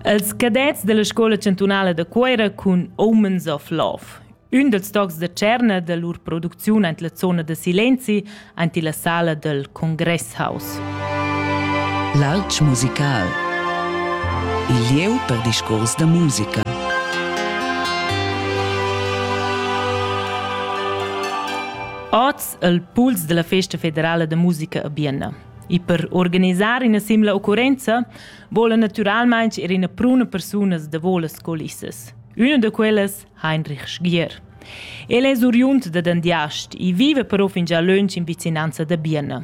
Els cadets della scola chantunala da Cuera cun Omens of Love. Ün dels tocs da tscherna da lur producziun ant la zona da silenzi ant la sala del Congresshaus. L'alch musical. Il lieu per discurs da musica. Oz il puls della Festa Federala de Musica a Bienna. E per organisar ina simila occurrenza vola naturalmein er ina pruna persunas da volas colissas. Una da quellas, Heinrich Sgier. El è oriund da Dandiast e vive però fingià lunsch in vicinanza da Biena.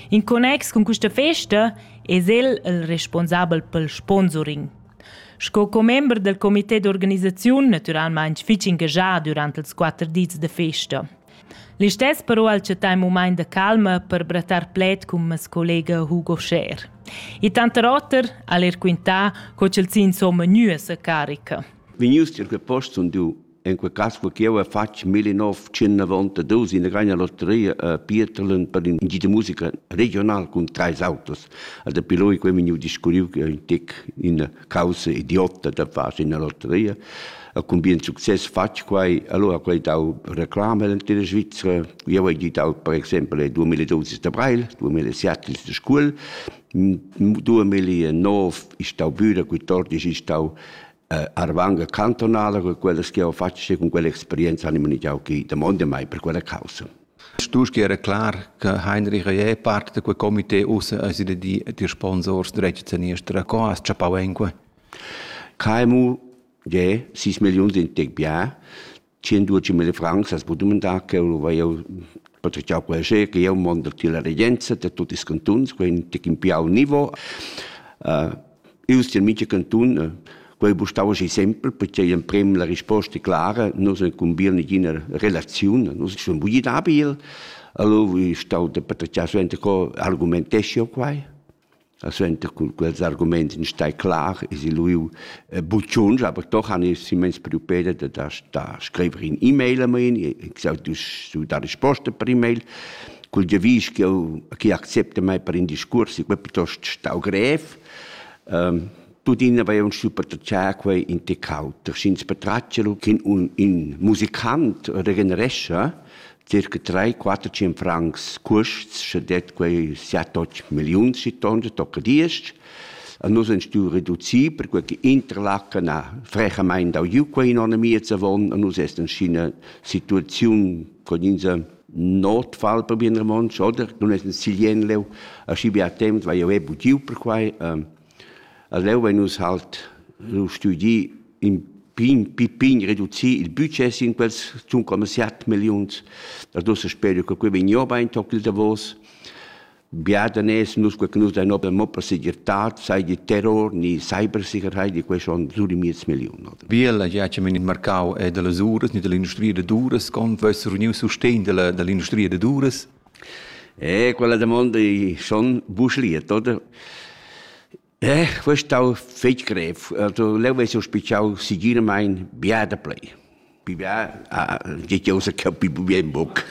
In connex con questa festa è el il responsabel pel sponsoring. Sco commember del comité d'organisaziun naturalmente fitg engagà durante ils quatter dis de festa. Listess però al chattà ün mumaint da calma per brattar pled cun mes collega Hugo Scher. E tanter oter al er quintà co ch'el s'ha insomma gnü a sa carica. Vegnius tier quei post sun du in quei cass co ch'jeu hai fatg 1992 in grana lotteria a Pieterlen per in gita musica regional cun treis autos. Also dapi loi quei vegniu discurriu che in tec in causa idiotta da far in lotteria. E cun bien success fatg quai, allora quai dau reclama nella Svizzera. Io ho dau per exempel 2012 d'Abril, 2007 in scuol, 2009 è stau Büra, 14 è stau eh, Arvanga cantonala, con quella che ho fatto e con quella esperienza animo ni jau che domande mai per quella causa. Stuschia era clar che Heinrich Reyet parte da quei comité ussa ha sil di dir sponsors dretg saniester a co has chappau en quei. KMU, je, 6 millions in tec bien, 112 mille francs as budem dar che eu vai eu patriciau quel che eu mond da la regenza da tutti i cantuns, quei un tec in piau nivo. Uh, Ius tier mica cantun, quei bustau aschi sempel, pertgei emprem la risposta clara, nus incumbiel negina relaziun, nus sun bugi dabel, allura vi stau da patratgiar suenter co argumentesch'jeu quai. E suenter cun quels arguments in stai clar es il lu buciunsch, aber doch han ich immens priupeda da da da scriver in e-mail a mein, ich sag du du da risposta per e-mail cul giavisch ch'eu chi accepta mai per in discurs, eu piuttost stau grev, ehm, tuttina vain stiu patratgiar quai in tec auter, sch'ins patratgia lu cun un, in musicant regenerescha circa 3-400 francs custs, sche det quei siat och milliuns si tonne tocca diesch. A nus han stuiu reducir, perquei che Interlaken ha frechamain dau giu quei in onn miez avon, a nus est in scina situaziun con ins Notfall per bien romontsch, oder? Nun es in silien leu, aschi bia temp vai jeu buc giu per quai. Ähm, a leu vein nus halt lu studi in pign, pi pign reducì il budget sin quels zun come 7 milliuns. Da dus speri che quei vegn jeu bein toc il davos. Bia daners nus quei che nus dein open mo per segirtad, sei di terror ni cybersicherheit di quei schon sur di miez million. Oder? Biella ja che men in marcau è delle uras ni dell'industria de duras con vess reuniu sustegn della dell'industria de duras? Eh, quella domanda è schon buschliet, oder? Eh, quei è stau fetg grev. Also, leu vess jeu spitschau segiramain bia daplei. Pi bia ah, che jeu sa capi bien buc.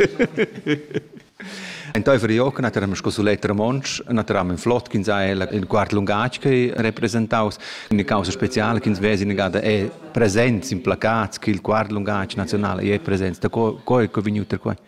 Enteifer Iochen hat er am scosulet romontsch, hat er am in flott ch'ins ha il quart lungatg che representaus, eine causa speciale ch'ins vesi negada è presents in placats che il quart lungatg nazionale è presents, da co, co è vegniut er quei?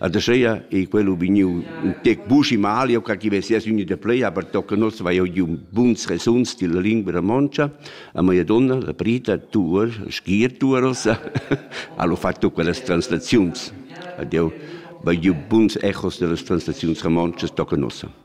Adescheia ei quello vegniu un tec buschi mal, io ca chi vessias uni de plei, aber tocca nos vai io giu buns resuns della lingua romoncia, a mia donna, la Prita, tuor, schier tuoros, allo fatto quellas translaziuns. Adio, vai giu buns echos dellas translaziuns romoncias tocca nossa.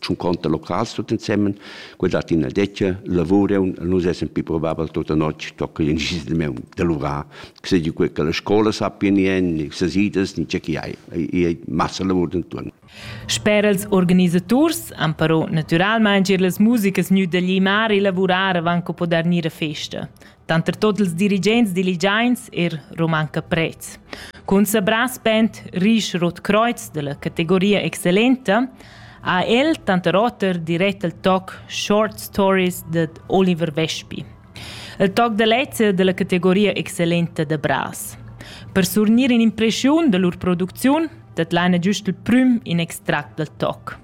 tschun conta locals tut ensemen, quei dat ina detga lavur e nus essen pi probabel tutta notg tocca in gis de meu de lurar, che se di quei che la scola sappia ni en, ni se sidas, ni che chi hai, ei massa lavur denton. Sper els organisators han però naturalmein gir las musikas gnü da glimar e lavurar avant co poder gnir a festa. Tanter tot ils dirigents diligiains er romanca prets. Cun sabrà spent risch Rot Kreuz della categoria excellenta ha el tanter oter dirett al toc Short Stories de Oliver Vespi. Il toc da lezza della categoria excellenta de Bras. Per surnir in impression da lur producziun dat l'Anna giust il prüm in extract dal toc.